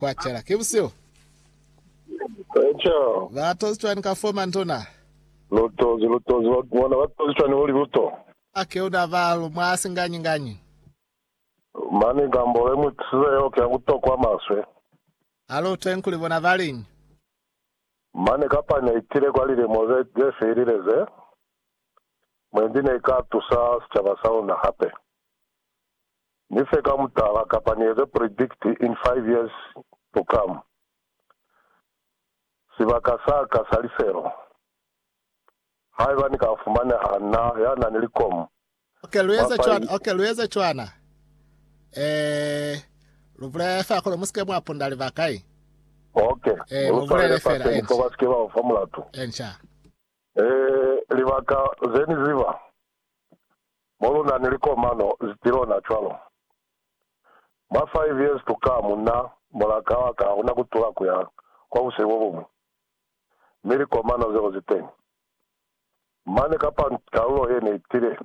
Kwa cela, ki busihu. Eco. Ba tozi cwani ka fo mantuna? Lu tozi, lu tozi, ba, bona ba tozi cwani kuli lu to. A keuna ba lu mwa singanyi-nganyi. Mani ka mbolo imwi kisize yeo ki ya ku to kwa maswe. A lu twengi kuli bona ba liñi. Mani kapani ya itile kwa lilemo ze, ze felile ze, mwendi ne i ka tusa sicaba sa luna hape. Ni fe ka mutala kapa ni eze predict in five years to come. Sibaka sa ka sa lifelo. Haiba ni ka fumaneha na ya na ni likomu, Ok, lu eza cwana, ok, lu eza cwana. Eh, lu bulele fela kuli musike mwa punda libaka i. Ok, Eh, mu lu swalele bulele fela, fafeni fo ba enca. sike ba u fa mulatu. Enca. Eh, libaka ze ni ziba. Mo lu na ni likomano ti lona cwalo. Mwa five years to come, na, mulaka wa ka, u na kutula ku ya kwa buseli bo buñwi. Mi likomano zeo zi teñi. Mane kapa kalulo ye ne itile,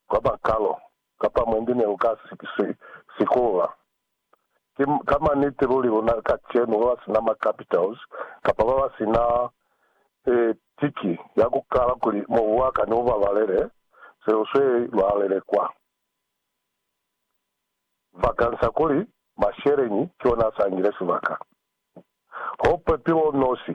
kwaba Carol, kapa mwendi ne lu ka si, si, sikulula. Ki ka maniti luli luna kacenu ba ba sina ma capitals kapa ba ba sina e, tiki ya ku kala kuli mobu wa ka ni u babalele, se lu swe lwa lelekwa vakansa kuli masheleñi ki ona a sangile sibaka. Ho pepilo nosi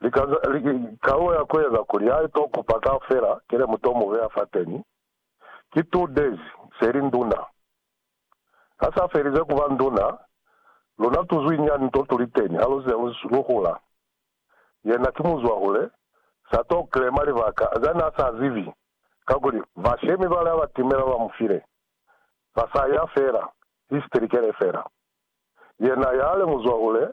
Kalulo ya ku eza kuli ha i to kupa kaufela ki le mu to mu beya fateni, ki two days se li nduna. Ha sa felize ku ba nduna, luna tu zwinyani nto tu li teni ha lu ze lu hula. Yena ki muzwahule, sa to claima libaka za n'a sa zibi, kakuli bashemi bale ha ba timela ba mu file, ba sa ya fela, history ke le fela. Yena yale muzwahule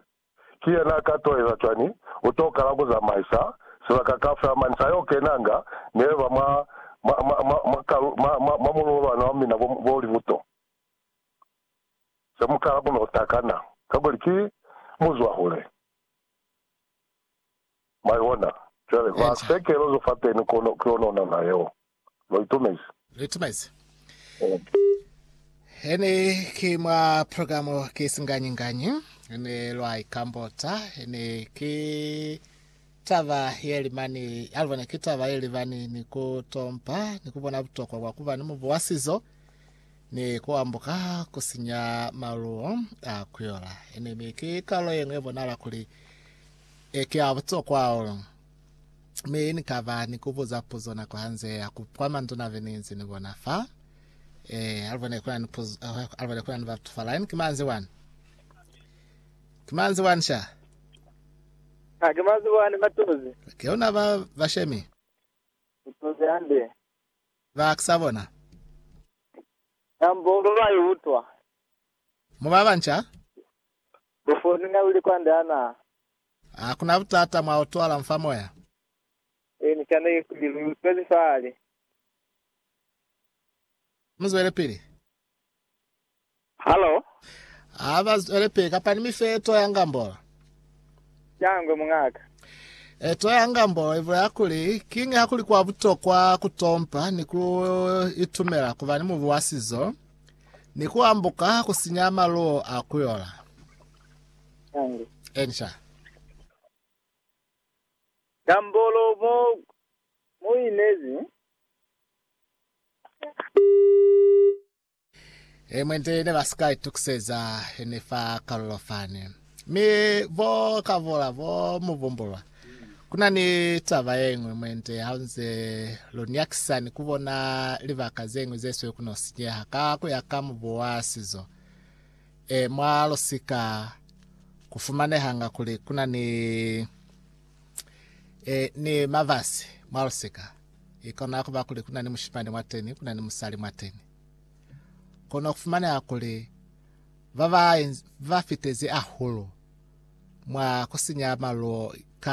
Ki yena ka to eza cwani? U to kala ku zamaisa sibaka kaufela mani sa yo kenanga ni eba mwa, mwa, mwa, mwa, mwa kalu, mwa, mwa, mwa mululo lwa nao mina bo, bo li buto. Se mu kala ku no takana, kakuli ki muzwahule. Mwa ibona? Cwale, ba, se kelozo fateni kono, ki ona, ona na yeo. Lo itumezi? Lo itumezi. He ne ki mwa programu ki singanyi-nganyi, ne lwa ikambota. He ne ki taba ye libani, alubo ne ki taba ye libani ni ku tompa ni ku bona butokwa bwa ku ba ni mubu wa sizo ni ku ambuka ku sinya maluwo a kuyola. He ne, mi ki kalulo ye ñwi ye bonala kuli ki ya butokwa hahulu. Mi Ni kaba ni ku buza puzo nako ha nze ya ku kwa manduna be ni nzi ni bona fa. Eh, alibone kuna ni puzo, eh, alibone kuna ni batu fa line. Kimanzi wani. Kimanzi wani sha. Ha ke mazi wani matozi. Ke una ba bashemi. Matozi hande. Ba kisabona. Nambo ndo ba yutwa. Mubaba ncha? Bufoni nga uli kwa ndana. Ha ku na butata mwa utwala mfa moya. Ini cana ye kuli lu utwezi fahali? Mu zwelepili. Halo? Ha ba zwelepili, kapa ni mi fe eto ya ngambolo. Shangwe, muñaka. Eto ya ngambolo i bulela kuli, Kiñi ha ku li kwa butokwa ku tompa ni ku itumela ku ba ni mubu wa sizo, ni ku ambuka ku sinya maluo a ku yola? Tangu. Answer. Tambolo mo mo inezi. E mwente ne ba sika itukiseza ne fa kalulo fani. Mi bo kavola bo mu bumbulwa. Kuna ni taba ye ngwe mwente haunze lu nyakisani ku bona libaka ze ngwe ze swe ku no sinyeha ka ku ya ka mubu wa sizo. E mwa lusika ku fumanehanga kuli ku na ni e, ni mabasi mwa lusika. I kona ku ba kuli ku na ni mushimani mwateni, ku na ni musali mwateni. Kono ku fumaneha kuli ba ba, ba fitezi ahulu mwa ku sinya maluo